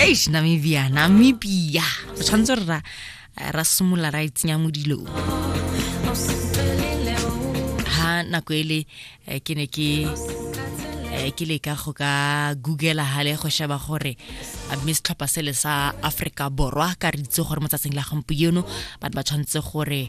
eish namibia namibia o tshwanetse re ra ra simolola ra itsenya mo dilong ha nako ele eh, ke ne ke eh, ke leka go ka googela hale go sheba gore eh, mme setlhopha sele sa aforika borwa ka re itse gore mo tsatsing la gompieno batho ba tshwanetse gore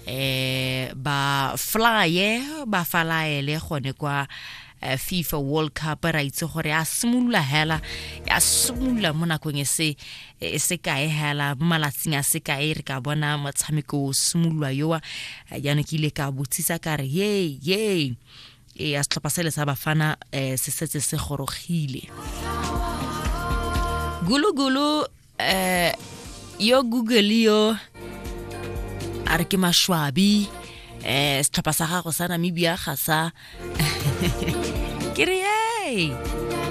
eh ba flye ba falaele gone kwa eh, Eh, fifa world cup ra itse gore ya simolola hela ya simolola mo nakong e se e se kae hela mo malatsing a se kae re ka bona motshameko o simolola yowa eh, jaanong ke ile ka botsisa ka re ye ye e ya setlhopha se le sa bafana um se setse se gorogile gulugulu eh yo google yo a re ke mashwabi eh setlhopha sa gago sa namibia ga sa ke re hey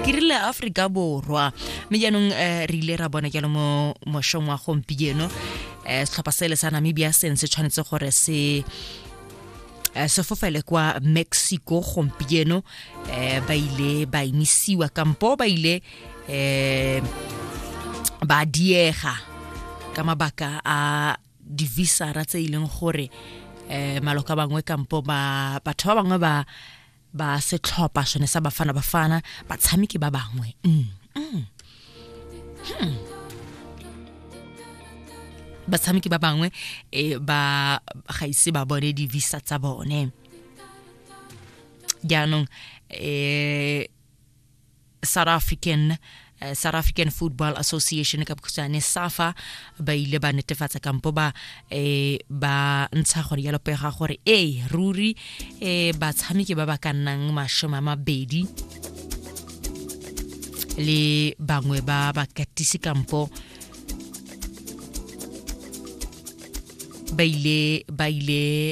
ke rile aforika borwa mme jaanong um re ile ra bona jalo mo mošong wa gompieno um setlhopha sele sa namibia seng se tshwanetse gore se Eh, sefofele kwa mexico gompieno um ba ile ba emisiwa kampo ba ile eh ba diega ka mabaka a divisara tse e leng gore eh maloka bangwe kampo ba batho ba bangwe ba ba setlhopha sone sa bafana bafana batshameki ba bangwe mm. Mm. Hmm. batshameki ba bangwe e ba ga ise ba bone di-visa tsa bone jaanong um South African uh, South African Football Association ka bokhutswane SAFA ba ile ba netefatsa kampo ba eh, ba ntsha gore ya lopega gore e ruri eh, batshameki ba ba ka nnang mashome a mabedi le bangwe ba bakatisi kampo ba ile ba ile